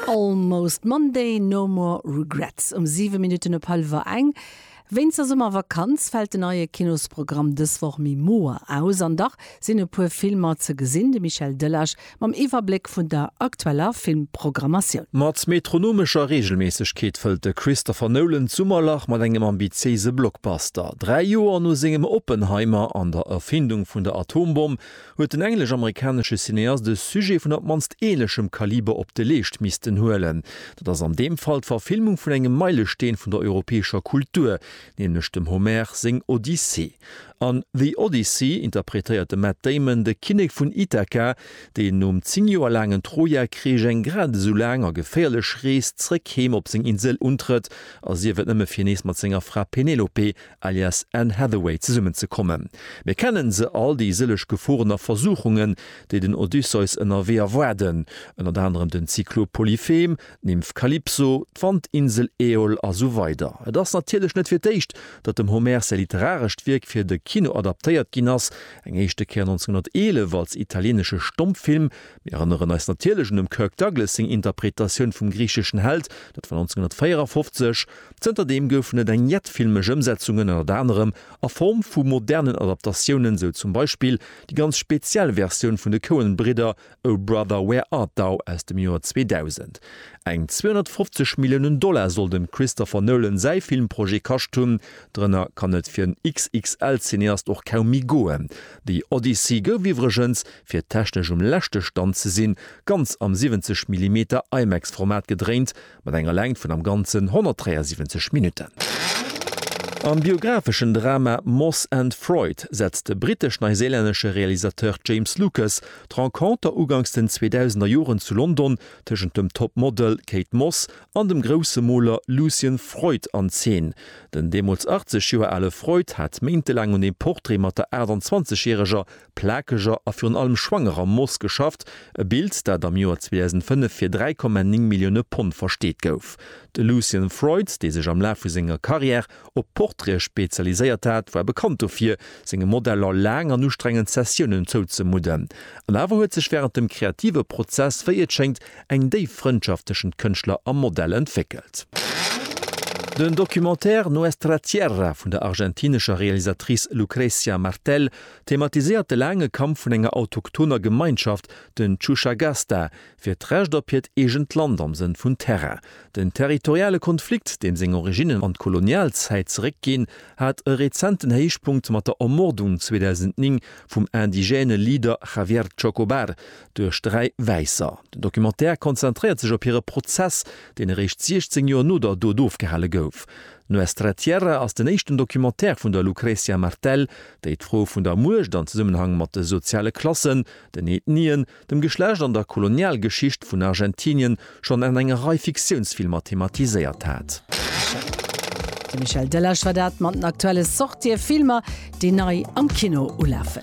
Almost Monday, no more regrets um 7 Minutten op hallwer eng. Wéinst der Summervakanz fält den neie Kinosprogramm dës Woch méi moer aus. An dach sinn e puer Filmer ze gesinn, de Michel Delage mam Iwwerbléck vun der aktueller Filmprogrammatioun. Mat metronomescher Reegelméissegkeet fëllt de Christopher Nolan d'Summerlach mat engem ambitiéise Blockbuster. Dräi Joer no sengem Oppenheimer an der Erfindung vun der Atombomm huet den englesch-amerikanesche Cineast e Sujet vun op d'mannst ähnlechem Kaliber op de Leescht missten huelen. Dat ass an deem Fall d'Verfilmung vun engem Meilesteen vun der europäescher Kultur, nämlech dem Homer seng Odyssee. An The Odyssey interpretéiert de Matt Damon de Kinnek vun Ithaka, deen nom zéng Joer laangen Troja-Krich eng grad esou laang a geféierlech Rees zréck heem op seng Insel untrëtt, a sief et nëmme fir nees mat senger Fra Penelope alias Anne Hathaway, zesummen ze kommen. Mir kennen se all, déi sëlleg Geforen a Versuchungen, déi den Odysseus ënnerwee erwaarden, ënnert anerem den Zyklop Polyphem, d'Nymph Kalypso, d'Wandinsel Äol a sou weider. Et ass natierlech net fir d'éischt, datt dem Homer säi literarescht Wierk fir de Kino adaptéiert ginn ass, eng éischte Kéier 1911 als italieenesche Stommfilm. Mir erënneren eis natierlech un dem Kirk Douglas seng Interpretatioun vum griicheschen Held, dat war 1954. Zënter deem goufen et eng jett filmesch Ëmsetzungen, ënnert anerem a Form vu modernen Adaptatiounen, sou zum Beispill déi ganz speziell Versioun vun de Coen-Bridder Oh Brother Where Art Thou aus dem Joer 2000. Eng 250 Milliounen Dollar soll dem Christopher Nolan säi Filmprojet kascht hunn. Drënner kann et fir en XXL-Cineast och kaum méi goen. The Odyssey gouf iwwregens, fir technesch um leschte Stand ze sinn, ganz am 70 Millimeter IMAX-Format gedréint, mat enger Längt vun am Ganzen 173 Minutten. Am biographeschen Drama Moss and Freud setzt de brittesch-neiséilännesche Realisateur James Lucas d'Renconter uganks den 2000er Joren zu London tëschent dem Top-Model Kate Moss an dem grousse Moler Lucian Freud an Zeen. Den deemools 80 Joer ale Freud hat méintelaang un dem Portrait mat der 28 järeger plakeger a virun allem schwangerer Moos geschafft, e Bild, dat am Joer 2005 fir 3,9 Millioune Pond versteet gouf. De Lucian Freud, dee sech am Laf vu senger Karriär op Portraite spezialiséiert hat, war bekannt dofir, senge Modeller laang an ustrengend Sessiounen zouzemudden. An awer huet sech wärend dem kreative Prozess, wéi et schéngt, eng déif Frëndschaft tëschent Kënschtler a Modell entwéckelt. Den Documentaire Nuestra Tierra vun der argentinescher Realisatrice Lucrecia Martel Thematiséiert de laange Kampf vun enger autochthoner Gemeinschaft, den Chushagasta, fir d'Recht op hiert eegent Land am Sënn vun Terrain. Den territoriale Konflikt, deem seng Originnen an d'Kolonialzäit zeréckginn, hat e rezenten Héichpunkt mat der Ermordung 2009 vum indigène Leader Javier Chocobar duerch dräi Wäisser. Den Documentaire konzentréiert sech op hire Prozess, deen eréischt 16 Joer no der Dot ofgehale gouf. Nuestra Tierra ass den éischten Documentaire vun der Lucrecia Martel, déi d'Fro vun der Muecht an Zesummenhang mat de soziale Klassen, den Ethnien, dem Geschlecht an der Kolonialgeschicht vun Argentinien schonn an enger Rei Fiktiounsfilmer thematiséiert hat. De Michel Delage war dat mat den aktuelle Sortië Filmer, déi nei am Kino ulafen.